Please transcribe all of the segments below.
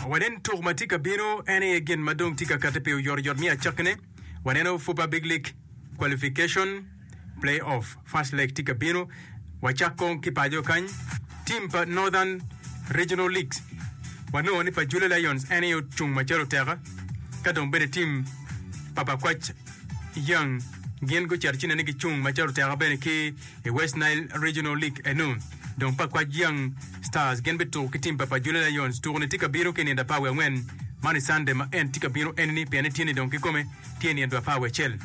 Wanen tuk ma tye ka bino, en aye gin ma dong tye ka katte pi oyotoyot me acakkine. Waneno Fupa Big League Qualification, Play-Off, First Leg tye ka bino. Wacak kong ki paco kany, tim pa Northern Regional Leagues. Wanongo ni pa Jula Lions en aye ocung macalo oteka, ka dong bene tim pa Bakwac Young gin gucito ci nen ni gicung macalo oteka bene ki I West Nile Regional League eno, dong pa Kwaj Young Stars gin bituko ki tim pa pa Jule Lions. Tuko ni tye ka bino ki nindo apar wiye angwen man i Cande ma en tye ka bino enini pien etye ni dong ki kome tye nindo apar wiye acel.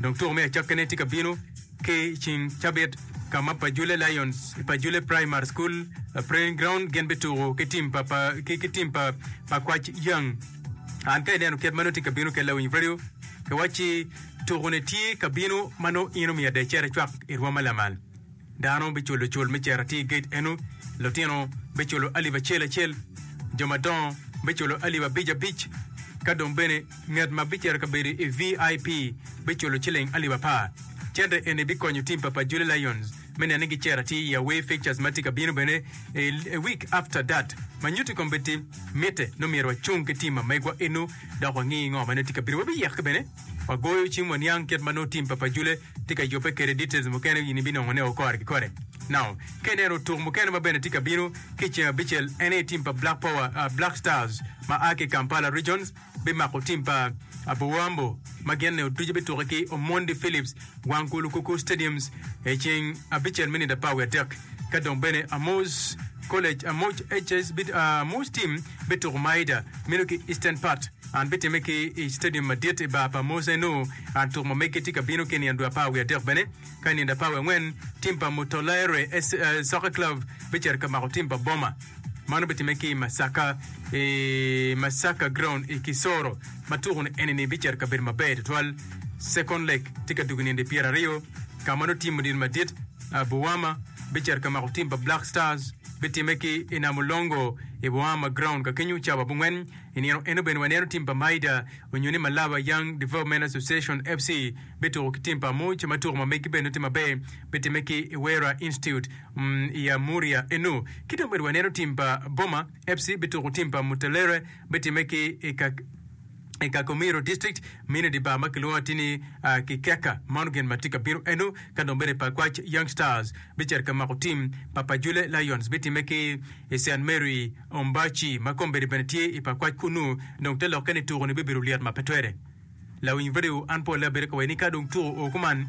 Dong tuko me acakkene tye ka bino ki cing cabit ka ma pa Jule Lions i pa Jule Primary School Praying Ground gin bituko ki tim pa pa ki ki tim pa pa Kwaj Young. An ka ineno kit ma nongo tye ka bino kede Lawiny Radio, kiwacci Tukone tye ka bino ma nongo in omiyo ada icera cwak i rwoma lamal. Dano biculo cul me cera atir gate eno, lutino biculo alip acel acel, jo madongo biculo alip abic abic, ka dong bene ngat ma bicito ka bedo i VIP biculo ciling alip apar. Cente eni bikonyo tim pa Pajuli Lions me neno ni gicero atir i away fixtures ma tye ka bino bene i week after that ma nyuto i kombeddi. Mitte nongo myero wacung ki tim ma megwa eno dok wangi ngo ma nongo tye ka bino. Wabiyek bene. Wa goyo cim waniang kit ma nongo tim pa Pajule tye ka yubbe kwede. Details mukene in ibinongo ne okore ki kore. Now, ka ineno otuk mukene ma bene tye ka bino ki i ceng abicel en aye tim pa Black Power, uh, Black Stars ma a ki i Kampala Regions bimako tim pa Aboambo ma gin ne otuce bituke ki Omondi Phillips, Wanku Lukuku Stadiums i ceng abicel me nino apar wiye adek. Ka dong bene Amos College, Amoc HS, bit, uh, Amos team bituko Maida meno ki Eastern part. An bitime ki i citedium madit i bar pa Musa enu. An tuk ma meggi tye ka bino ki i nino dwe apar wiye adek bene. Ka i nino dwe apar wiye angwen, tim pa Mutolaere SC Soccer Club bicito ka mako tim pa Boma. Mano bitime ki i Masaka i Masaka Ground i Kisoro ma tuku ni enini bicito ka bedo maber tutwal. Second leg tye ka dugo i nino dwe pyera aryo ka ma nongo tim odino madit a Buwama bicito ka mako tim pa Black Stars. Bitime ki i Namulongo i Buwama Ground ka kenyu cawa abongwen. I nino eno bene waneno tim pa Maida onyo ni Malaba Young Development Association FC bituko ki tim pa Amuch ma tuko ma megi bene nongo tye maber bitimme ki i Wera Institute i Amuria eno. Ki dong bene waneno tim pa Boma FC bituko tim pa Mutelere bitimme ki i Kakomiro District mine di bar ma kilwongo atir ni Kikeka Moungain ma tye ka bino eno. Ka dong bene Pakwac Young Stars bicito ka mako tim pa Pajule Lions bitimme ki i Saint Mary Ombachi, ma kombeddi bene tye i pakwac kunnu, dong te lokke ni tuku-ni bibedo lyet ma pe twere. Lawiny redio, an polle abedo ka wayi ni ka dong tuku oo kuman,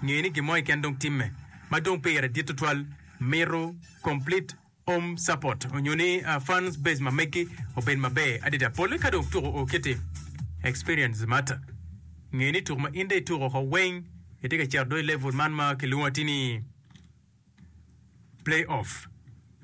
nge ni gin mo keken dong timme, ma dong pire dit tutwal, mito complete home support onyo ni fans base ma megi obed maber adida. Polle ka dong tuku oo kiti, experience matter. Nge ni tuku ma in dong ituku oko weng, itye ka cito do i level man ma kilwongo ati ni. Play off.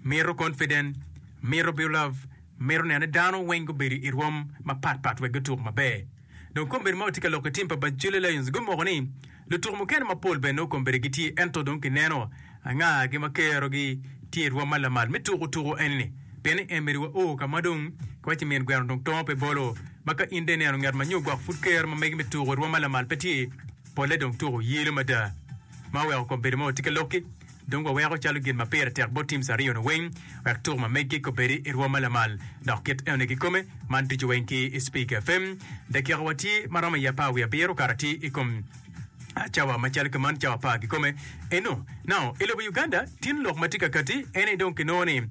Mito confident, mito build up, mito neno ni dano weng gubedo irwom mapat pat wek gutuk maber. Dong kombeddi ma watye ka loko i team pa Bacchule Lions gumoko ni lutuku mukene mapol bene nongo kombeddi gitye ento dong kineno anga gi ma kero gi tye irwom ma lamal me tuku tuku eni ni. Pien ni Emery wa oo ka ma dong ki waci min gweno dong tongo pe bolo ma ka in dong ineno nget ma nyo gwok pud kero ma megi me tuku irwom ma lamal pe tye. Polle dong tuko yelo mada ma oweko kom bedo ma watye ki lok-ki. Dong waweko calo gin ma pire tek bot teams aryo-nu weng wek tuko ma meggi kobedi i rwom ma lamal dok kit enoni kikome. Man ducu weng ki i Speaker FM. Dakika watye ma romo i apar wiye abiro kara tye i kom cawa macalo ki man cawa apar kikome eno. Now, i lobo Uganda, tin lok ma tye ka kati en aye dong kinongo ni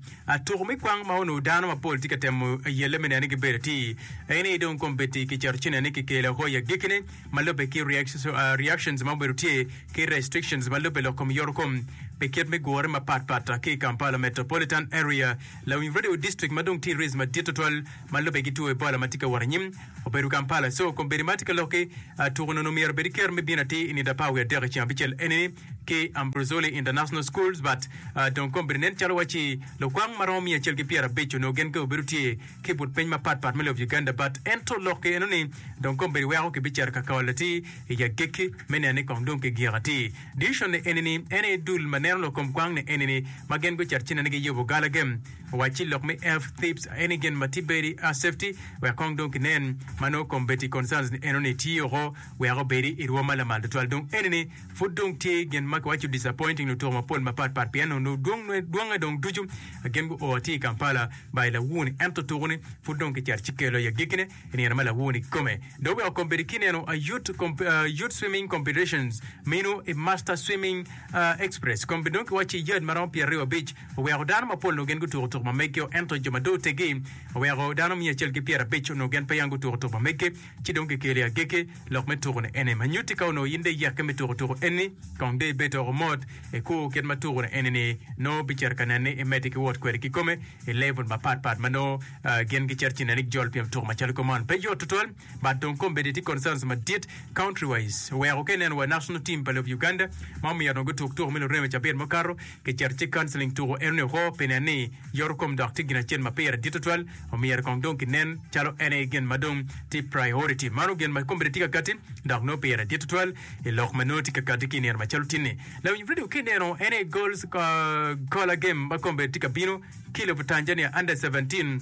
tuko me kwang ma onongo dano mapol tye ka temo yelle me neno ni gibedo atir en aye dong kombeddi kiceto ci neno ni kikelo hoi agekkine. ma lubbe ki reactions ma obedo tye ki restrictions ma lubbe lok kom yoro kom pi kit me gure mapat pat ki i Kampala Metropolitan Area. Lawiny radio district ma dong tye race madit tutwal ma lubbe ki two Ebola ma tye ka wot anyim obedo Kampala. So kombeddi ma tye ka lok ki tuko nono myero obed kero me bino atir i nino apar wiye adek i ceng abicel enini ki Ambrosoli International Schools but dong kombeddi nen calo waci lukwang ma romo miya acel ki pyera abic onongo gen ke obedo tye ki but piny mapat pat me lob Uganda bat ento lok ki eno ni dong kombeddi weko ki bicito ka kaol atir i agikki me neno ni kong dong ki gik atir. Division ni eni ni en aye dul ma neno lok kom kwang ni eni ni ma gin gucito ci neno ni gi yubo gala gem owac ci lok me F thieves aye ni gin ma tibedi a safety wek kong dong ki nen ma nongo kombeddi concerns ni eno ni tiyo oko wek obedi i rwo ma lamal tutwal dong eni ni pud dong tye gin ma ki waco disappointing lutuku mapol mapat pat pien onongo dwong dwonge dong ducu gin gu o atir i Kampala ba i lawoni, ento tuku ni pud dong kicer ci kelo i agikine i nino ma lawoni kome. Dok weko kom bedi kineno a Youth, Comp, uh, Youth Swimming Competitions minu i Master Swimming uh, Express, kom bedi dong kiwacci i yard ma romo pyeraryo abic, oweko dano mapol onongo gin gutuku tuku ma megio, ento jo ma dong otegi oweko dano miya acel ki pyerabic onongo gin peya gutuku tuku ma meggi. Ci dong kikeli agege lok me tuku-ni ene ma nyutti ka onongo in dong iyekke me tuku tuku eni, kong dong ibed doko mot, ikur kit ma tuku-ni eni-ni nongo bicito ka nenni, imeddi ki wot kwede kikome i level mapat pat ma nongo gin gicito ci neni gijolo pien tuku macalo kome man pe yot tutwal. But dong kombeddi tye concerns madit country-wise, oweko ka ineno wa national team pa lobo Uganda ma omyero dong gutuk tuku me lureme cabit mukato, Kicito ci counseling tuko enoni woko pi nen ni yoto kom dok tye gin acel ma pire dit tutwal, omyero kong dong kinen calo en aye gin ma dong tye priority. Mano gin ma ikombeddi tye ka kati dok nongo pire dit tutwal i lok ma nongo itye ka kati ki i nino macalo tinni. Lawiny redio ki ineno en aye goals caller game ma kombeddi tye ka bino ki lobo Tanzania under seventeen.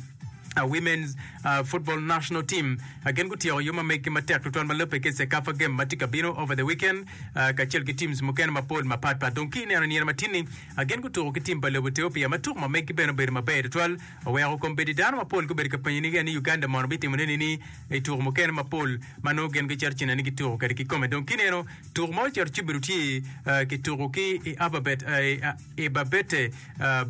Women's Football National Team gin gutyeko yo ma meggi matek tutwal ma labbe ki CECAFA game ma tye ka bino over the weekend kacel ki teams mukene mapol mapat pat. Dong ki ineno nino ma tinni gin gutuko ki team pa lobo Ethiopia ma tuko ma meggi bene obedo maber tutwal oweko kombeddi dano mapol gubedo ka penyo niga ni Uganda mono bitimo ne nini i tuko mukene mapol ma nongo gin gicito cina ni gituko kede ki kome. Dong ki ineno tuko ma ocito ci obedo tye kituko ki i Alphabet i Babette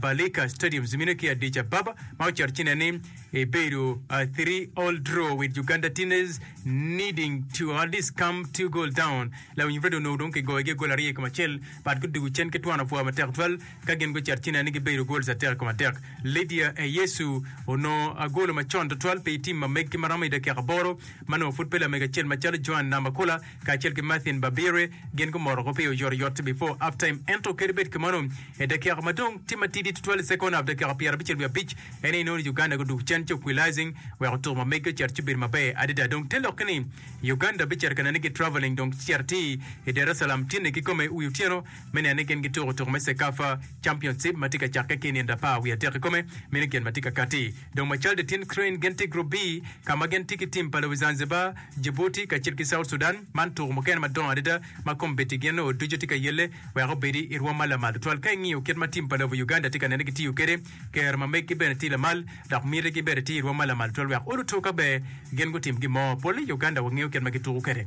Balika Stadium zimine ki Addis Ababa ma oceto cine ni ebedo a three all draw with Uganda Teenagers needing to at least come two goal down la winyo bedo onongo dong kigoyo gi gol aryo i kom acel but gudugu cen ki twano pwa matek twal ka gin guceto cine ni gibedo goals atek i kom adek Lydia Eyesu onongo agolo macon tutwal pi tim ma meg ki maromo i dakika aboro ma nongo pud pe lamego acel macalo Joan Namakula kacel ki Marthin Babirye gin gumoro ko pi oyotoyot before half time ento kadi bed kamano i dakika ma dong tye matidi tutwal i second half dakika pyera abicel wiye abic en aye inongo ni Uganda gudug cen ci oquilizing weko tuko ma megi ocito ci bedo maber adada dong te lokke ni Uganda bicito ka neno ni gi travelling dong ci cito atir i Daresalam tyene kikome wi otyeno me neno ni gin gituko tuko me Cecafa Championship ma tye ka cakke ki i nino apar wiye adek kikome meno gin ma tye ka katti dong macalde tin Crane gin tye i Group B ka ma gin tye ki tim pa Lobi Zanzibar Djibouti kacel ki South Sudan, man tuko mukene madongo adada ma kombeddi gin nongo ducu tye ka yelle wek obedi i rwom ma lamal tutwal. Ka ingiyo kit ma tim pa lobo Uganda tye ka nene kitiyo kwede, kero ma meggi bene tye lamal dok miti gi bene tye i rwom ma lamal tutwal wek oluto ka ber gin gutim gin mo. Pole i Uganda wangeyo kit ma gituko kwede.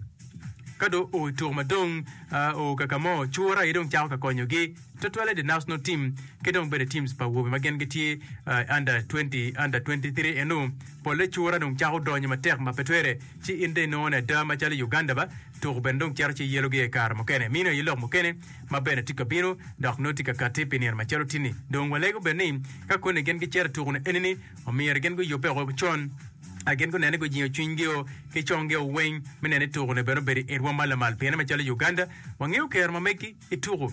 Ka dong oo i tuko madong oo kaka mo, cura aye dong cako ka konyogi. Tutwalle the national team ki dong bene teams pa awobe ma gin gitye uh, under 20, under 23 enu polle cura dong cako donyo matek ma pe twere ci in dong inongo ni ada macalo i Uganda ba tuku bene dong cito ci yelo gi aye kare mukene mino aye lok mukene ma bene tye ka bino dok nongo tye ka kati pi nino macalo tini dong walego bene ni ka koni gin gicito tuku ni eni ni omyero gin guyube oko con a gin gunene gujingo cwiny gio ki cong gio weng me nene tuku ni bene obedo i rwom ma lamal piene macalo i Uganda wangeyo kero ma megi I tuku,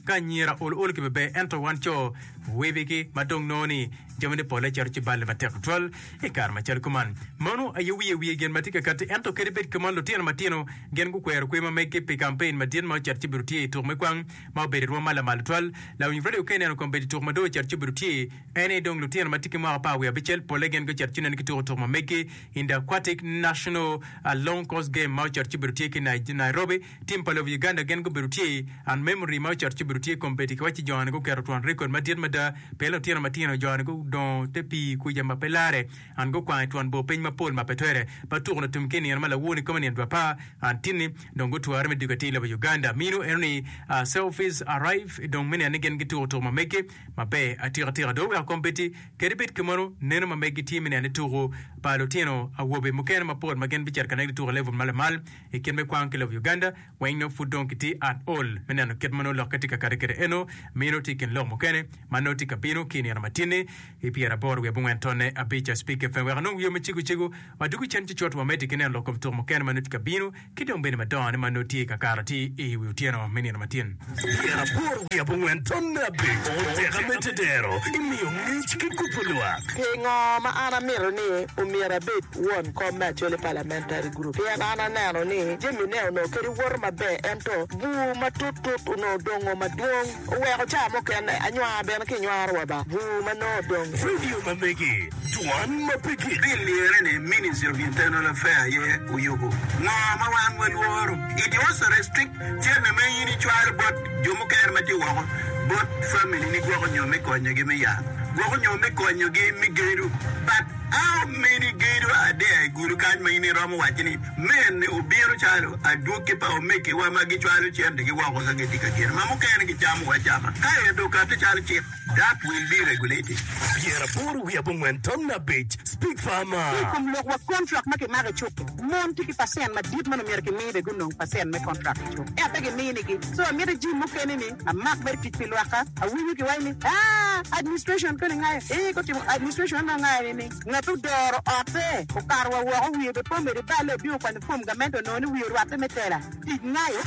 ka anyira ol ol kibe ber ento wan co wibigi ma dong nongo ni jamine pole cito ci balle matek tutwal i kare macalo kuman. Mano aye wiye wiye gin matye ka kati ento kadi bed kuman lutino matino gin gukwero kwer ma meggi pi kampein madit ma ocito ci obido tye ituk me kwang ma obedo irwom ma lamal tutwal. Lawiny radio ka ineno kombeddi tuk ma dong ocito ci obedo tye en ni dong lutino matye ki mwaka apar wiye abicel pole gin gucito ci neno ki tuku tuk ma meggi in the aquatic national long course game ma ocito ci obedo tye ki Nairobi Tim pa lobo Uganda gen gubedo tye and memory ma ocoto ci obedo tye competi ki wacci joni guketo twon record madit mada pi lutino matino joni gudongo te pii kwica ma pe lare and gukwang itwon bor piny mapol ma pe twere ma tuku latum ki inino ma lawor ni kome nino dwa pa and tinni dong gutware me duga ti lobo Uganda minu eno ni a selfies arrive dong me neno ni gen gituku tuku ma meggi ma ber atika tika do weko competi kedi bed ki mono neno ma meggi tye me neno ni tuku pa lutino awobe mukene mapol ma gen bicito ka negi tuku i level ma lamal I kit me kwang ki lobo Uganda weng nongo pud dong kitye at ol me neno kit ma nongo lokke tye ka kati kwede eno miyo nongo tye i kin lok mukene ma nongo tye ka bino ki i nino ma tye-ni i pyera aboro wiye abongwen tonne abic a Speak FM wek anong wiwa me cego cego ma dwogo cen ki cot wa mede ki neno lok kom tuko mukene ma nongo tye ka bino ki dong bene madongo-ni ma nongo tye ka kato atir i wi otyeno me nino ma tye-ni. Tyen aboro wiye abongwen tonne abiro, tek amedde dero, imiyo ngic ki kubo lwak. Pingo ma an amito ni omyero abed won kom me Acholi Parliamentary Group? Pien an aneno ni jamine onongo kadi woto maber ento bur matut tut onongo dongo madwong oweko ca mukene anywar bene kinywaro wa ba bur ma nongo odong. Radio ma megi, Dwan ma pe gik. Bill lyere ni Ministry of Internal Affair aye oyubo ngo ma wan walworo. It was a restricted. Jami ma in icwalo bot jo mukene ma tye woko bot familini gwoko nyo me konyogi me yat, gwoko nyo me konyogi me gedo. But how many gedo are there i gulu kany ma in iromo waco ni men obino calo adwogi pa omegiwa ma gicwalo centigi woko ka gitye ka gedo ma mukene gicamo acama kaeto okato calo cik? Dak wil di regulated pyera aboro wiye abongwen tonne abic speak farmer. Ki i kom lok wa kontrak ma kimako i cukki, mon tye ki pacent madit ma nongo myero kimi be gunong pacent me kontrak i cukki ento pe giminigi. So amyero jim mukene ni amak mere tic pi lwakka. Awinyo kiwaco ni aah administration koni ngayo eeh gutimo administration anongo ngayo ni ni ngat odoro otte okato wa woko wiye be pe omede balle obino kwanyo form gamente onongo ni wiye orwatte me tela. Tic nayo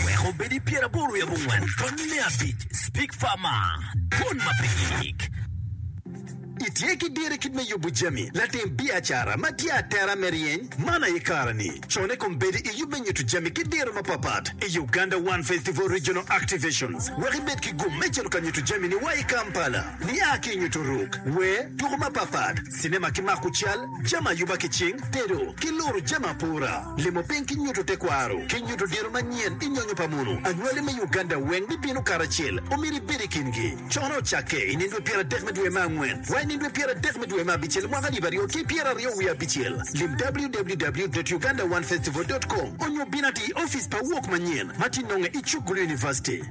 wek obed i pyeraboro wiye abongwen tonni me abic Speak Farmer Dwon ma pe yik. Itye ki dir i kit me yubo jami latim biacara ma tye atera me ryeny man aye kare-ni. Con i kom bedo i yub me nyuto jami ki diro mapapat i Uganda One Festival Regional Activations wek ibed ki gum me cito ka nyuto jamini wa i Kampala. Nia ki i nyuto ruk, wer, tuko mapapat, cinema ki mako cal, jami ayuba ki cing, tedo, ki luru jami apora, limo piny ki nyuto tekwaro, ki nyuto diro manyen i nyonyo pa munu. Anywali me Uganda weng bibino karacel. Omyero ibed i kingi. Cone ocakke i nino dwe pyeradek me dwe me angwen wa i nino dwe pyeradek me dwe me abicel mwaka alip aryo ki pyeraryo wiye abicel. Lim www.ugandaonefestival.com onyo bin ati i opic pa wok manyen ma tye nonge i Chukgulu University.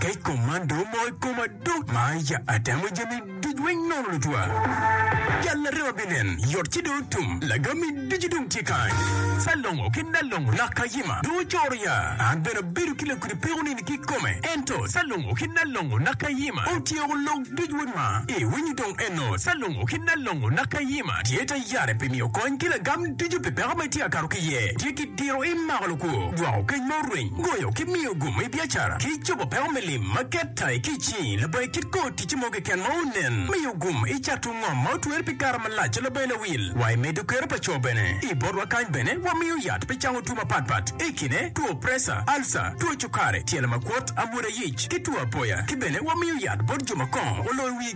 Kec komando mo i koma dok ma ya atemo jami duc weng nono lutwa. Jal larema binen, yot ci dong tum, lagami ducu dong tye kany. Salongo ki nalongo lak kayima dong ocoro ya. An bene abedo ki lakudi peko nini ki kome. Ento salongo ki nalongo lak kayima otyeko lok duc weng ma. I winyo dong eno salongo ki nalongo lak kayima tye ta yare pi miyo kony ki lagam ducu pi peko ma itye ka kato ki ye. Tye ki Tiro i mako lukwo, gwoko kec ma orweny, goyo ki miyo gumo i biacara, ki cobo peko me lim ma keta i kic ni labayi kit kor ticce mo keken ma onen. Miyo gum i cato ngom ma otwer pi kare malac ci labayi lawil. Wa i medo kero pa co bene. I botwa kany bene wamiyo yat pi cango two mapat pat i kine two presa, alca, two cukari, tyelo makwot, amwoda yic, ki two apoya. Ki bene wamiyo yat bot jo ma kongo oloyo wigi.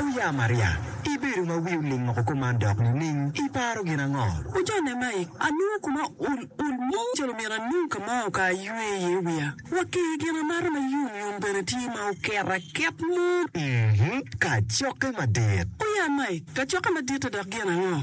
Wuya Maria, ibedo ma wi oling woko kuman dok nining? Iparo gin ango? Wuja Nemaik, anongo koma ol ol mo calo myero anong ka ma oka aywe iye wiya. Wa ki gin amata ma yom yom bene tye ma oket aket mo. Uhmm, kacokke madit! Wuya Maik, kacokke madit-ta dok gin ango?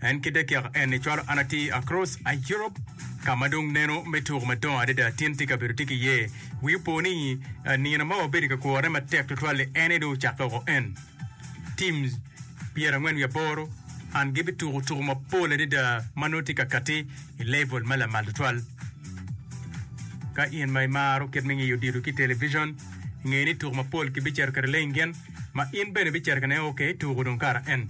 En kite kek en ni cwalo an ati across Europe ka ma dong neno me tuko madongo adada tin ti kabedo ti ki ye. Wi opo ni nino ma wabedo ka kworone matek tutwal ni en ni dong ocakke oko en. Teams pyera ngwen wi aboro and gibi tuko tuko mapol adada ma nongo ti ka kati i level ma lamal tutwal. Ka in ma imaro kit me ngiyo odilo ki television, nge ni tuko mapol kibi ceto kede lengin ma in bene ibi ceto kene ok tuko dong kara en.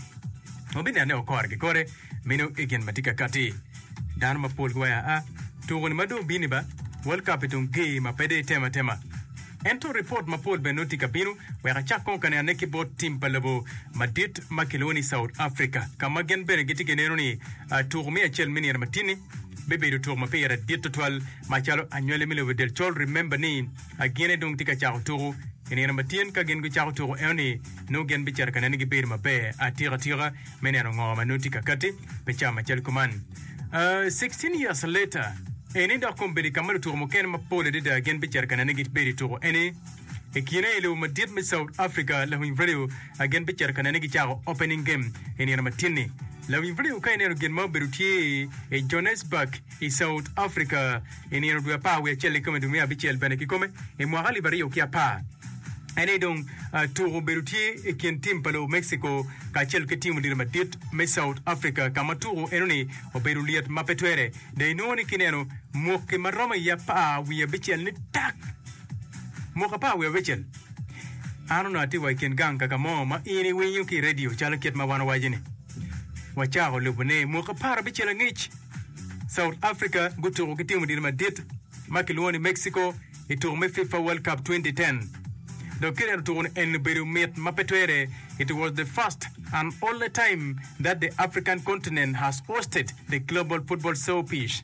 wubinene okore ki kore meno i gin ma tye ka katti. Dano mapol giwayo aa, Tuko-ni ma dong bini ba, World Cup-pi dong ger ma pe dong itemo atema. Ento ripot mapol bene nongo tye ka bino wek acak kong ka nene ki bot tim pa lobo madit ma kilwongo ni South Africa ka ma gin bene gitye ka neno ni tuko me acel me nino matini bibedo tuko ma pire dit tutwal macalo anywali me lobo del col. Remember ni A Gine dong tye ka cako tuku. I nino ma tin ka gin gucako tuku enoni, nongo gin bicito ka neno gibedo maber atika tika me neno ngo ma nongo tye ka katti pi ca macalo kuman. A 16 years later, eni dok kong bedo i ka ma lutuku mukene mapol adada gin bicito ka neno gibedo i tuku eni. I kine i lobo madit me South Africa, lawiny radio a gin bicito ka neno gicako opening game i nino ma tin-ni. Lawiny radio ka ineno gin ma obedo tye i Johannesburg i South Africa, I nino dwe apar wiye acel kikome dwe me abicel bene kikome i mwaka alip aryo ki apar. En aye dong tuko obedo tye i kin tim pa lobo Mexico kacel ki tim odilo madit me South Africa ka ma tuko enoni obedo lyet ma pe twere. Dong inongo ni kineno mwaki ma romo i apar wiye abicel ni tak mwaki apar wiye abicel. An onongo atye wa i kin gang kaka mo ma in iwinyo ki i redio calo kit ma wan owaco ni wacako lubone mwaki apar abicel angec. South Africa gutuko ki tim odilo madit ma kilwongo ni Mexico i tuko me FIFA World Cup 2010. Dok kit en otuko-ni en obedo mit ma pe twere, it was the first and only time that the African continent has hosted the global football showpiece.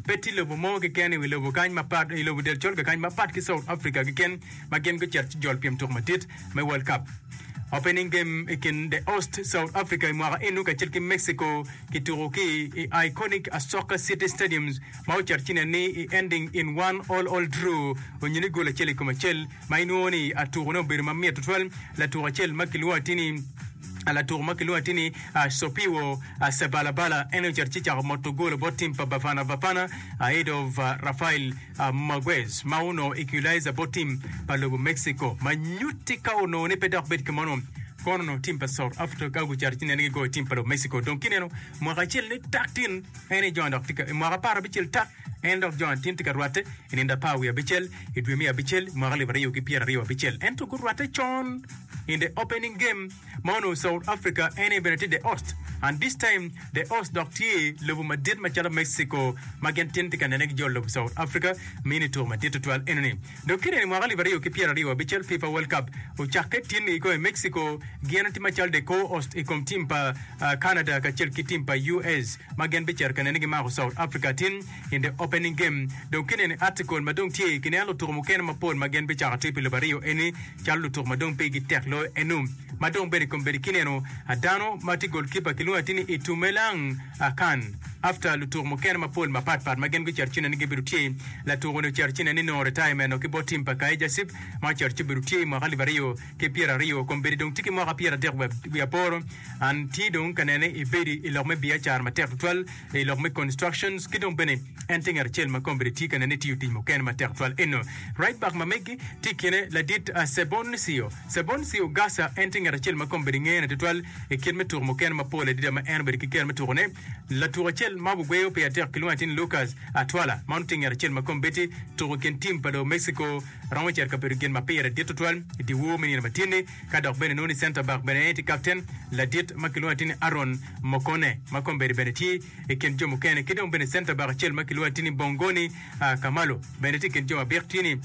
Pe tye lobo mo keken i wi lobo kany mapat, i lobo del colga kany mapat ki South Africa keken ma gin gucito ci jol pyem tuko madit me World Cup. Opening game i kin the host South Africa i mwaka enu kacel ki Mexico Kituko ki i Iconic Asoka City Stadium ma ocato ci nen ni i Ending in One All All Drew onyo ni gol acel i kom acel ma inwongo ni atuko ne obedo mamit tutwal. Latuk acel ma kilwongo atir ni Latuk ma kilwongo atir ni Sopiwo Sebalabala en aye ocato ci cako moto golo bot tim pa Bafana Bafana Aidov Rafael. Maguez ma onongo equalizer bot tim pa lobo Mexico ma nyutti ka onongo ni pe dok bed ki mono. Kono onongo tim pa South Africa ka gucato ci nene gigoyo tim pa lobo Mexico dong kineno mwaka acel ni tak tin en i John dok tye ka i mwaka apar abicel tak en dok John tin tye ka rwatte i nino apar wiye abicel i dwe me abicel mwaka alip aryo ki pyeraryo abicel ento gurwatte con in the opening game ma onongo South Africa ene bene tye the host and this time the host dok tye lobo madit macalo Mexico ma gin tin tye ka nene ki jo lobo South Africa me ni tuko madit tutwal enoni. Dok kine ni mwaka alip aryo ki pyera aryo abical FIFA World Cup ocakke tin i kome Mexico gin tye macalo the co-host i kom team pa Canada kacel ki team pa US ma gin bicito ka nene gimako South Africa tin In the Opening Game, Dong kineno i article ma dong tye, kineno lutuku mukene mapol ma gin bicako tye pi lobo aryo eni calo lutuku ma dong pigi tek loyo enu. Ma dong bene kombeddi kineno a dano ma tye goalkeeper kilwongo atir ni Itumeleng Akan. After lutuku mukene mapol mapat pat ma gin gucito ci neni gibedo tye, latuku ni ocito ci neni nongo retirement o ki bot team pa Kaizer Cif ma ocito ci obedo tye i mwaka alip aryo ki pyera aryo. Kombeddi dong tye ki mwaka pyera dek wiye aboro and tye dong ka nene i bedi i lok me biacara matek tutwal. i lok me constructions ki dong bene en tye ngat acel ma kombeddi tye ka nene tiyo tic mukene matek tutwal eno. Reitbach ma megi tye i kine ladit Seboncio Seboncio Garza en tye ngat acel ma kombeddi ngene tutwal i kit me tuko mukene mapol adida ma en obedo ki kero me tukone. Latuk acel ma wagweyo pire tek kilwongo atir ni Lucas Atwala ma nongo tye ngat acel ma kombeddi tuko i kin tim pa lobo Mexico romo cito ka bedo gin ma pire dit tutwal i dye wor me nino ma tye-ni. Ka dok bene nongo ni center back bene en tye captain, ladit ma kilwongo atir ni Aaron Mokone ma kombeddi bene tye i kin jo mukene ki dong bene center back acel ma kilwongo atir ni Bongoni Kamalo bene tye i kin jo ma bik tye ni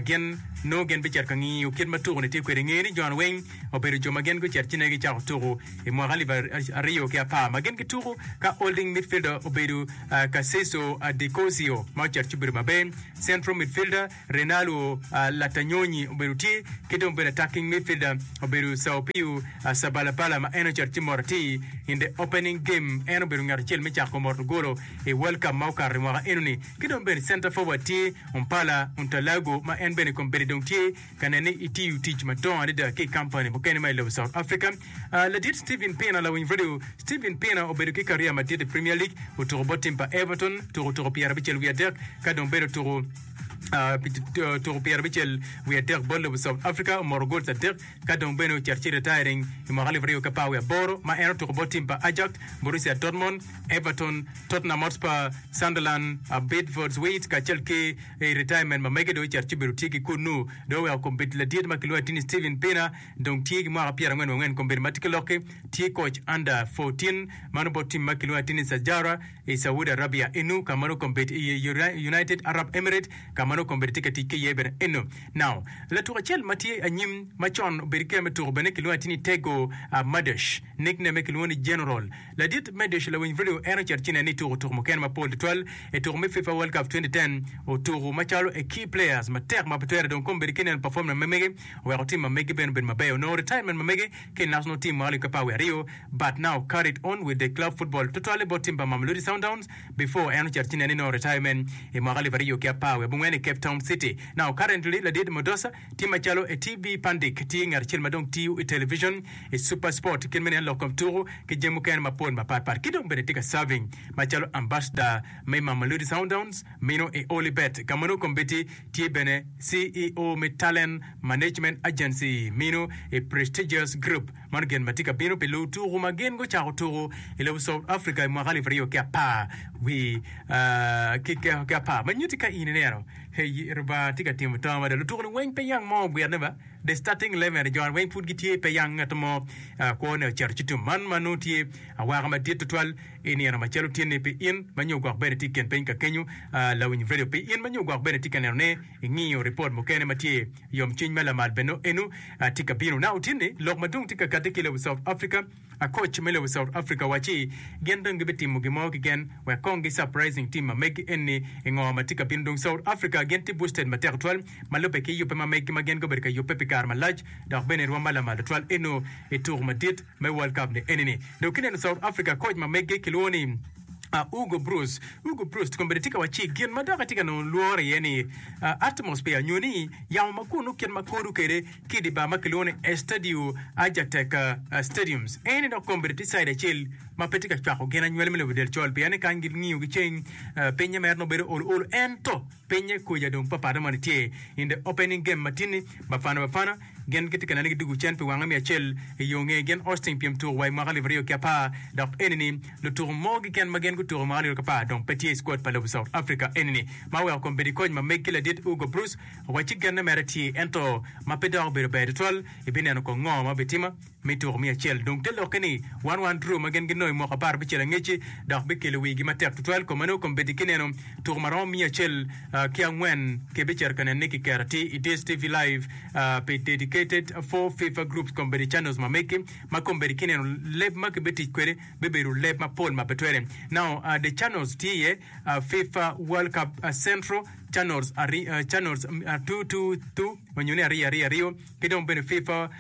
gin nongo gin bicito ka ngiyo kit ma tuku-ni tye kwede. I ngeye ni jo-ni weng obedo jo ma gin gucito ci nongo gicako tuku i mwaka alip aryo ki apar ma gin gituku ka holding midfielder obedo Kaseso Dicozio ma ocito ci obedo Mabe, central midfielder. Renaldo Latanyonyi obedo tye ki dong bedo attacking midfielder obedo Sao Pio Sabalabala ma en ocato ci mot atir in the opening game en obedo ngat acel me cako moto golo i World Cup ma okato i mwaka enoni ki dong bene center forward tye Ompala Untalago ma en bene kombeddi dong tye ka nen ni itiyo tic madongo adada ki i kampani mukene ma i lobo South Africa. Ah, Ladit Steven Pina Lawiny Radio, Steven Pina obedo ki kariya madit i Premier League, otuko bot tim pa Everton, tuko tuko pyerabicel wiye adek, ka dong bene otuko. pi tuko pyere abicel wiye adek bot lobo South Africa omoto gols adek ka dong bene ocito ci retiring i mwaka alip aryo ki apar wiye aboro ma en otuko bot tim pa Ajax, Borussia Dortmund, Everton, Tottenham Hotspur, Sunderland, Bidvord's Wheat kacel ki i retirement ma mege dong ocito ci obedo tye ki kunnu. Dong oweko kombeddi ladit ma kilwongo ni Steven Pienaar dong tye ki mwaka pyere angwen wangwen kombeddi ma tye ki lokki tye koc under 14 mano bot tim ma kilwongo ni Sajara I Saudi Arabia eno ka ma nongo kombeddi iye United Arab Emirate ka ma nongo kombeddi tye ka tic ki iye bene eno. Now, latuko acel ma tye anyim ma con obedo ki kema me tuko bene kilwongo atir ni Tego Madesh, nick name-me kilwongo ni General. Ladit Madesh lawiny vidio en ocito ci neno ni tuko tuko mukene mapol tutwal i tuko me FIFA World Cup 2010 otuko macalo a key players matek ma pe twere dong kombeddi ki neno performance ma mege oweko tim ma megi bene obedo mabeyo nongo retirement ma mege ki National Team ma Olycka Power aryo, but now carried on with the club football tutwalle bot tim pa Mamelodi Sundowns before en ocit ci nenino retirement i mwaka alip aryo ki apar wiye abongwen i Cape Town City. Now currently Ladid Modosa tye macalo a TV pandik tye ngat acel ma dong tiyo i television i Supersport kit meno en lok kom tuku ki jami mukene mapol mapat pat ki dong bene tye ka serving macalo ambassador me Mamelodi Sundowns meno i Olybet ka ma nongo kombeddi tye bene CEO me Talent Management Agency mino i Prestigious Group. Mano gin ma tye ka bino pi luwo tuku ma gin gucako tuku i lobo South Africa i mwaka alip aryo ki apar ki apar ma nyutti ka in ineno Hey Lubanga tye ka timo to mada. Lutuku-ni weng pe yang mo ogwirne ba. The Starting Eleven jo-ni weng pud gitye pe yang ngat mo kwone ocito ci tum. Man ma nongo tye awaka madit tutwal i nino macalo tyenni pi in ma nyo gwok bene tye i kin piny ka kenyo. Lawiny redio pi in ma nyo gwok bene tye ka neno ni Ingiyo ripot mukene ma tye yomcwiny ma lamal bene eno tye ka bino. Na otinni lok madwong tye ka kati ki lobo South Africa, akoc me lobo South Africa wacci gin dong gibi timo gin mo kiken wek kong gi surprising team ma megi enni ingo ma tye ka bino dong South Africa gin tye boosted matek twal ma lube ki yube ma megi ma gin gubedo ka yube pi kare malac dok bene irwom ma lamal twal eno ituku madit me World Cup ni eni ni dong kineno South Africa koc ma meggi kilwongo ni uh, Hugo Broos. Hugo Broos kong bene tye ka wacci gin ma dok etye ka nongo lworo iye ni uh, atmosphere nyo ni yamo ma kunu kit ma kodo kwede ki i di bar ma kilwongo ni Estadio Ajatec uh, Stadiums. Eni dok kong bene tye caid acel ma pe tye ka cwako gin anywali me lobo del col pien ni kany gingiyo giceng uh, pinye mere nongo bedo olo olo ento Pinye kuca dong papat na moni tye. In the opening game matinni, Bafana Bafana gin gitye ka nene ki dugu cen pi wange miya acel i yo nge gin Austin pyem tuku wa i mwaka alip aryo ki apar dok enini lutuku mogo keken ma gin gutuku i mwaka alip aryo ki apar dong pe tye i squad pa lobo South Africa enini ma oweko kong bedo i koc ma meg ki ladit Hugo Broos wa ci genne mere tye ento ma pe dok obedo ber tutwal ibineno kong ngo ma bitima Me tuko miya acel dong te lokke ni One One Draw ma gin ginongo i mwaka apar abicel angecci dok bikelo wigi matek tutwal kome nongo kombeddi ki neno tuko ma romo miya acel ki angwen ki bicito ka nenne ki kero atir i DSTV Live pi dedicated for FIFA groups kombeddi channels ma meggi ma kombeddi ki neno leb ma ki betic kwede bibedo leb ma pol ma pe twere now the channels tye iye FIFA World Cup Central channels channels two two two nyo ni aryo aryo aryo. ki dong bene fifa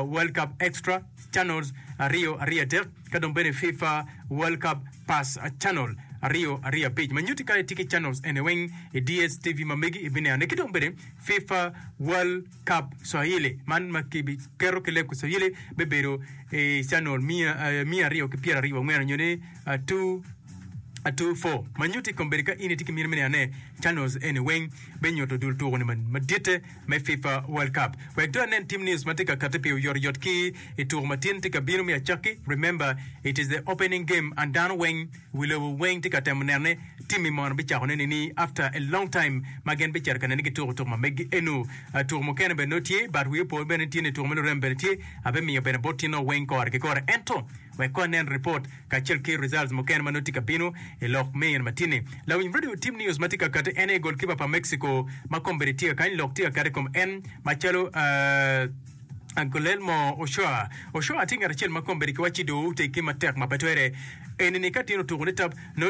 world cup extra channels aryo aryo adek ka dong bene fifa world cup pass channel aryo aryo abic ma nyuti kadi tye ki channels ene weng i dstv ma megi ibinene ki dong bene fifa world cup swahili man ma kiketo ki leb ki swahili bebedo i channel miya eh, miya aryo ki pyera aryo wangwen nyo ni ah, two two four ma nyuti kombedi ka in itye ki mine me nenone channels ene weng benyuto dul tuko ni maditte me FIFA World Cup. Wek dong anen team news ma tye ka katte pi oyotoyot ki i tuko ma tin tye ka bino me acakki, remember it is the opening game and dano weng, wi lobo weng tye ka temo nene team mi mono bicakone nini after a long time ma gin bicito ka nene gituko tuko ma megi eno. Tuko mukene bene nongo tye but wi opo bene tye ni tuko me lurem bene tye, ape miyo bene bot tinoo weng kore ki kore ento wek kong anen report. kacel ki results mukene ma nongo tye ka bino i lok me in matini. Lawiny radio team news matye ka kati en aye goal keeper pa Mexico ma kombedi tye kakany lok tye kakati kom en macalo uh, Guillermo Ochoa. Ochoa tye ngat acel ma kombedi ki wacci doo otegi matek ma pe twere. Enini ka tin otuko ni tab nongo tye